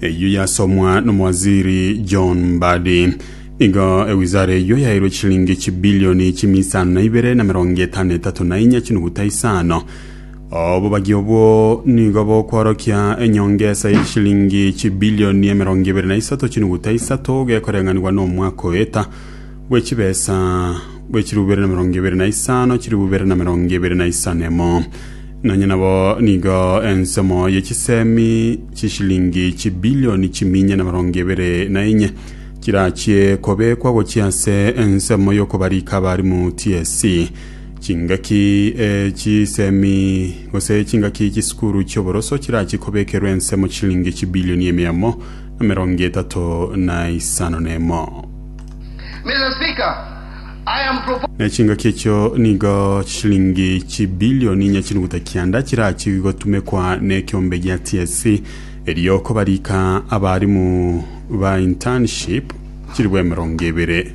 Eyio yasomwa n'omowaziri John Mbadi. Igo ewizara eyio yairwe chilingi chibilioni chimi isano na ibere na emerongo etano na etato na inya chinuguta isano. Obobagi obwo nigo bokworokia enyongesa ye chilingi chibilioni emerongo ibere na isato chinuguta isato gekoreng'anigwa n'omwaka oeta bwe chibesa bwe chirubu ibere na emerongo ebere na isano, chirubu ibere na emerongo ebere na isano emo. Nonya nabo nigo ensomo ye chisemi chishilingi chibilioni chiminya na emerongo ebere na enye chirachie kobekwa gochia ase ensemo y'okobarika abarimu TSC. Chingaki e chisemi gose chingaki chisukuru chi'oboroso chirachie kobekerwa ensemo chishilingi chibilioni emiamo na emerongo etato na isano na emo. Na chingaki echio nigo chishilingi chibilioni inya chinuguta kianda chirachigwe gotumekwa nekeombe gia TSC erio kobarika abarimu ba internship chilifu emerongo ebere.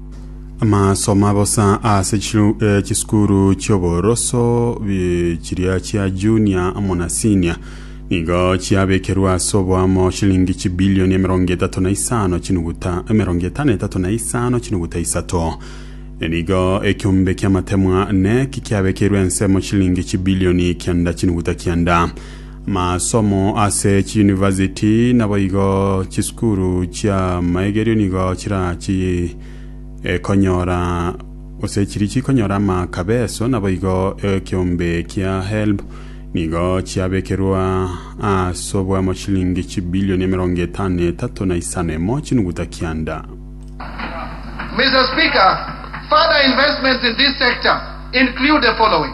Amasoma bosa ase chiru- eh, chisukuru chi'oboroso bi- chiria chia junior amo na senior nigo chiabekerwe ase oboamo shilingi chibilioni emerongo etato na isano chinuguta emerongo etano etato na isano chinuguta isato nigo ekiombe ki'amatemwa neki kiabekeirwe ensemo shilingi chibilioni kianda chinuguta kianda Masomo ase chiyunivasiti naboigo chisukuru chia maegerio nigo chirachi ekonyora gose chiri chikonyora amakabeso naboigo ekiombe kia HELB nigo chiabekerwa ase obw'amashilingi chibilioni emerongo etano etato na isano emo chinuguta kianda. Mr. Speaker, further investments in this sector include the following.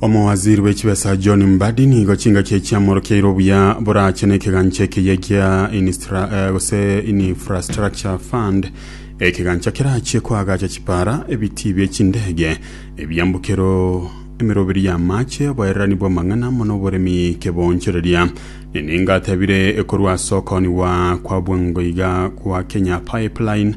Omowaziri bwe chibesa John Mbadi nigo chingaki echi amorokeire obuya borache na ekegancha ekeye kia Inistra, eh, gose Infrastructure Fund ekegancha kerachie koagacha chipara, ebitii bie chindege, ebiambokero, emeroberi y'amache, oboererani bw'amang'ana amo n'oboremi kebonchoreria. Nenenga atebire ekorwa ase okoniwa kwa bwango iga kwa Kenya Pipeline